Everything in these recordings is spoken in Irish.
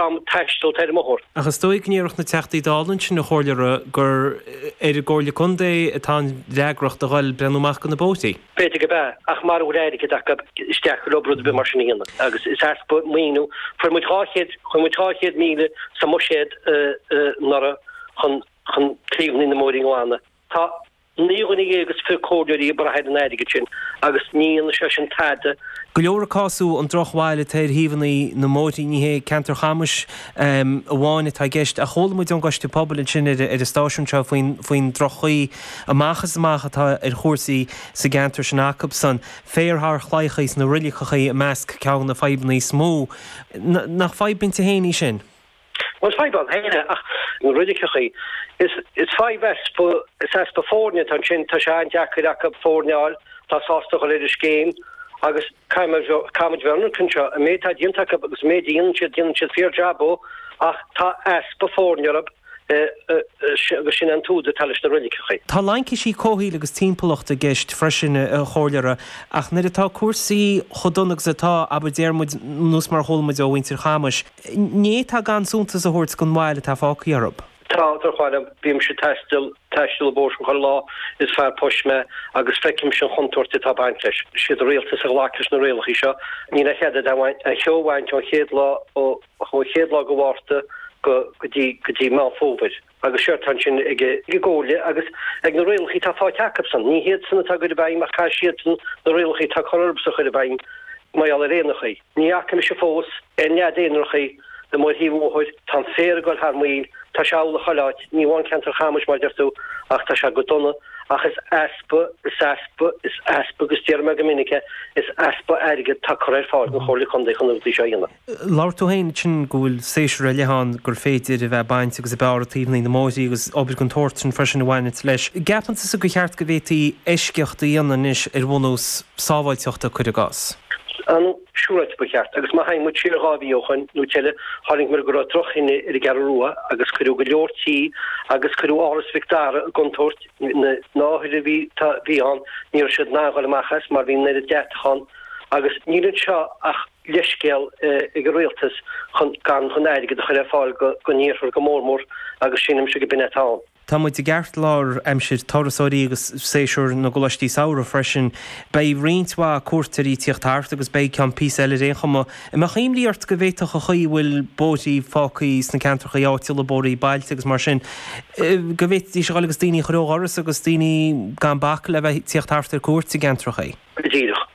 ag taisteal ar an mbóthar. Ach is dóigh go ndéarfaidh na Teachtaí Dála ansin a chomhairleora gur ar an gComhairle Contae atá an fhreagracht a dhul ag breathnú amach do na bóithrí. B'fhéidir go b'ea, ach mara bhfuil airgead acu ní féidir leo rud ar bith mar sin a dhéanamh agus is easpa maoiniú, fuair muid dhá chéad, chuir muid dhá chéad míle sa mbuiséad anuraidh chun chun taobhanna na mbóithrí a ghlanadh. Tá. Naoi dhuine dhéag is fiche comhairleoirí ag brath ar an airgead sin agus ní dhéanfaidh sé sin tada. Go leor ag cásamh an drochbhail atá ar thaobhanna na mbóithrí. Ní hé ceantar Chamais amháin atá i gceist ach chuala muid ón gcoiste pobail ansin ar an stáisiún seo faoin droch-chaoi amach is amach atá ar chúrsaí sa gceantar sin acubsan, féar thar chlaíocha sna roilliceacha i measc ceann de na fadhbanna is mó. Nach fadhb inti féin í sin? Más fadhb ann féin é, ach na roilliceachaí, is fadhb is easpa foirne atá ansin, tá sé an-deacair acu foirne a fháil atá sásta dhul ar an scéim agus caithfimid bheith ionraic anseo, an méid atá déanta acu agus an méid a dhéanann siad, déanann siad fíor jab ach tá easpa foirne orthu agus sin é an t-údar atá leis na roilliceachaí. Tá laincisí comhshaoil agus timpeallachta i gceist freisin a chomhairleora, ach nuair atá cúrsaí chomh dona agus atá, abair, déarfaimid, nó is mar a chualamid ó mhuintir Chamais, ní féidir gan suntas a thabhairt don bhail atá fágtha orthu. Tá, tar choir liom. Bímse ag taisteal, taisteal an bóthar chuile lá is fearr poist mé, agus feicimse an chontúirt atá ag baint leis. Siad an Rialtas a ghlac leis na rialachaí seo. Níl a chead a cheo a bhaint ón chéad lá, ó chéad lá de Mhárta go dtí Meán Fómhair. Agus séard atá ansin ag an gComhairle agus ag na rialacha atá fáighte acabsan. Ní hiadsan atá á gcur i bhfeidhm ach tá siadsan, na rialacha atá curtha orthubsan a chur i bhfeidhm mar gheall ar éanachaí. Ní fhaca mise fós aon nead éanrachaí amuigh ar thaobh an bhóthair. Tá an féar ag dul thar maoil. Tá sé amhlaidh chuile áit. Ní amháin ceantar Chamais mar a deir tú ach tá sé go dona. Ach is easpa, is easpa, is easpa, agus déarfaidh mé go minic é, is easpa airgead atá curtha ar fáil don Chomhairle Contae chun na rudaí seo a dhéanamh. Labhair tú féin ansin go bhfuil séasúr ar leith ann gur féidir a bheith ag baint agus ag bearradh taobhanna na mbóithrí agus obair den tsórt sin freisin a bhaineanns leis. Gceapann tusa gur cheart go bhféadfaí eisceacht a dhéanamh anois ar bhunús sábháilteachta, cuir i gcás? Ó siúráilte ba cheart. Agus má thagann muid siar dhá mhí ó shoin nó tuilleadh, thug muid faoi deara go raibh droch-thine ar an gCeathrú Rua agus cuireadh go leor tí agus cuireadh Áras Mhic Dara i gcontúirt na hothair a bhí ann ní raibh siad in ann dul amach as mar bhí an oiread deatach ann agus níl anseo ach leithscéal ag an Rialtas chun gan chun airgead a chur ar fáil go n-iarthar go mór mór agus sílimse go b'in é atá ann. Tá muid i gceartlár aimsir turasóirí agus séasúr na gcoláistí samhraidh freisin. Beidh roinnt mhaith cuairteoirí ag tíocht thart agus beidh ceann píosa eile ar aon chuma. An mbeadh imní ort go bhféadfadh an chaoi a bhfuil bóithrí fágtha sna ceantrachaí áitiúla, bóithrí bailte agus mar sin, go bhféadfadh sé a ghoil agus daoine a chur ó dhoras agus daoine gan bac le bheith ag tíocht thart ar cuairt i gceantrachaí? Go díreach.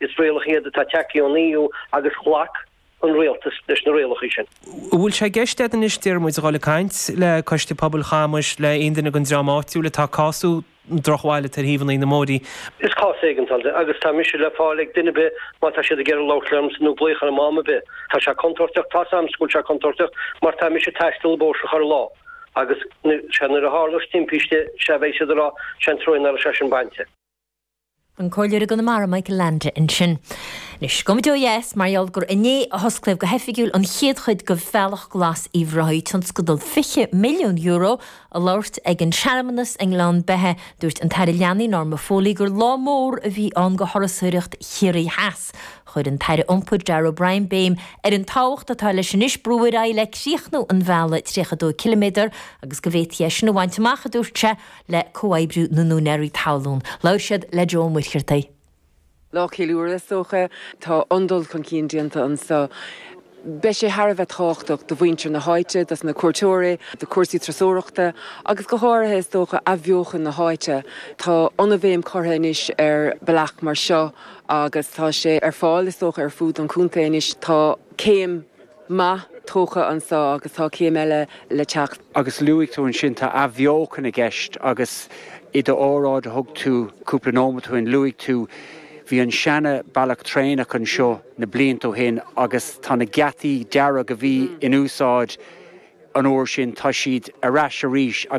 Is rialacha iad atá ag teacht ón EU agus ghlac an Rialtas leis na rialacha sin. An bhfuil sé i gceist agat anois, Diarmuid, dhul ag caint le Coiste Pobail Chamuis, le aon duine den dream áitiúil atá cásu drochbhailite ar shuíomhanna na Móirí? Is cás éigeandála é seo agus tá mise le fáil ag duine ar bith má tá siad ag iarraidh labhairt liomsa nó glaoch orm am ar bith. Tá sé contúirteach, tá's agamsa go bhfuil sé contúirteach mar tá mise ag taisteal na mbóithre sin chuile lá agus, sé nuair a tharlós timpiste, 'sé a bheidh siad a rá, 'sé an treo inar fhás sé sin bainte. an Comhairleoir i gConamara Michael Leainde ansin. Anois, gabhaimid ó dheas mar gheall gur inné a hosclaíodh go hoifigiúil an chéad chuid de Bhealach Glas Uíbh Ráthaigh, tionscadal €20 milliún. Ag labhairt ag an searmanas i nGleann Beithe, dúirt an tAire Leanaí Norma Foley gur lá mór a bhí ann do thurasóireacht Chiarraí Theas. Chuir an tAire Iompair Darragh O'Brien béim ar an tábhacht atá leis anois brú ar aghaidh le críochnú an bhealaigh 32 ciliméadar agus go bhféadfaí é sin a bhaint amach, a dúirt sé, le comhoibriú na n-úinéaraí talún. Labhair siad le Joe Ó Muircheartaigh. Lá ceiliúrtha is dócha. Tá an-dul chun cinn déanta anseo. Beidh sé thar a bheith tábhachtach do mhuintir na háite, dos na cuairteoirí, do cúrsaí turasóireachta agus go háirithe is dócha athbheochan na háite. Tá an-bhéim curtha anois ar bealach mar seo agus tá sé ar fáil is dócha ar fud an Chontae anois. Tá céim. maith tógtha anso agus tá céim eile le teacht. Agus luaigh tú ansin, tá athbheochan i gceist agus i d'óráid a thug tú cúpla nóimeat ó shin, luaigh tú, bhí an seana-bhealach traenach anseo na blianta ó shin agus tá na geataí dearga a bhí in úsáid an uair sin, tá siad ar ais arís agus.